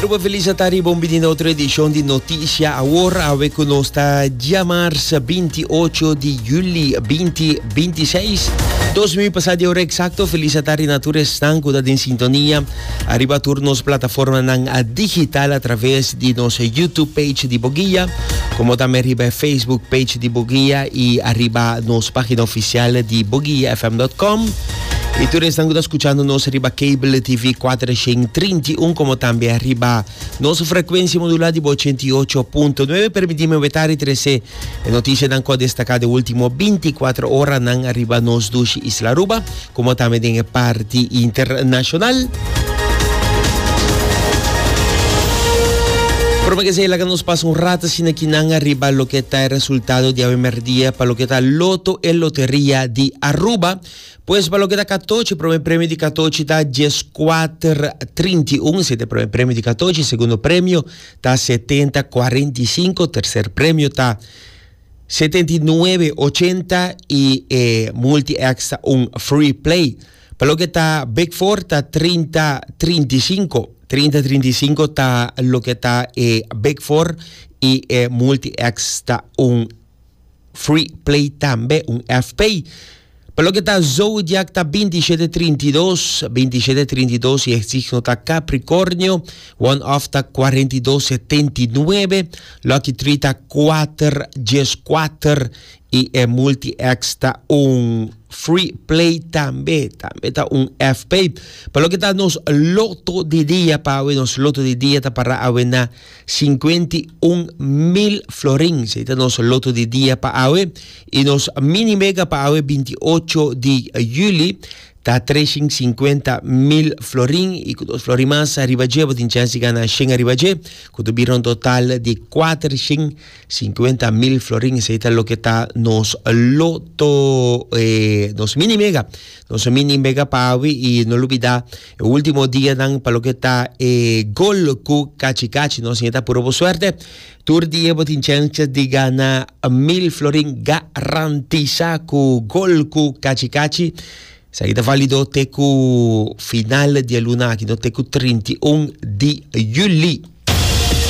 Aruba Feliz a ta riba un bini na otro edishon di Notisha Awor, awe ku nos ta diamars 28 di juli 2026. Dos mi pasa di ora eksakto, feliz a ta rina tur esnan ku ta den sintonia ariba tur nos plataformanan digital atraves di nos YouTube page di Boguia, komo tambe riba e Facebook page di Boguia i ariba nos pagina ofisial di boguiafm.com. Y tur esnan cu ta escuchando nos riba cable TV 431 como también riba nos frecuencia modular di 88.9. Permitime weta y trece noticia nan cu destaca de último 24 hora nan riba nos dushi Isla Aruba como también den e party internacional. Prome que sea, laga nos pasa un rato sin aquí nan riba lo que ta resultado di awe merdia pa lo que ta Loto e Loteria di Aruba. Pues pa loke ta katochi, prome premio di katochi ta dies kuater trinta i un, sete prome premio di katochi, segundo premio ta setenta kuarenta i sinku, terser premio ta setenta i nuebe ochenta i e multi X ta un free play. Pa loke ta big four ta trinta trinta i sinku, trinta trinta i sinku ta loke ta e big four i e multi X ta un Free Play tambe un FP. Pa loke ta zodiak ta binti shete trinta i dos, binti shete trinta i dos i e signo ta Capricornio, one off ta cuarenta i dos setenta i nuebe, lucky tree ta kuater djes kuater i e multi X ta un. Free Play tambe tambe ta un FP. Pa loke ta nos loto di dia pawe nos loto di dia ta para awe na Sinkuenti un mil florin, esei ta nos loto di dia pa awe, i nos mini mega pa awe binti ocho di juli ta treshin sinkuenta mil florin, i ku dos florin mas riba dje bo tin chèns di gana shen riba dje, ku ta bira un total di kuatershin sinkuenta mil florin, esei ta loke ta nos loto, nos mini mega, nos mini mega pa awe, i no lubidá. E ultimo dianan pa loke ta e gol ku kachi kachi no siña ta puro bo suerte. Tur dia bo tin chensha di gana mil florin garantisá ku gol ku kachi kachi. Esaki ta válido te ku final di e luna aki no te ku trinta i un di yuli.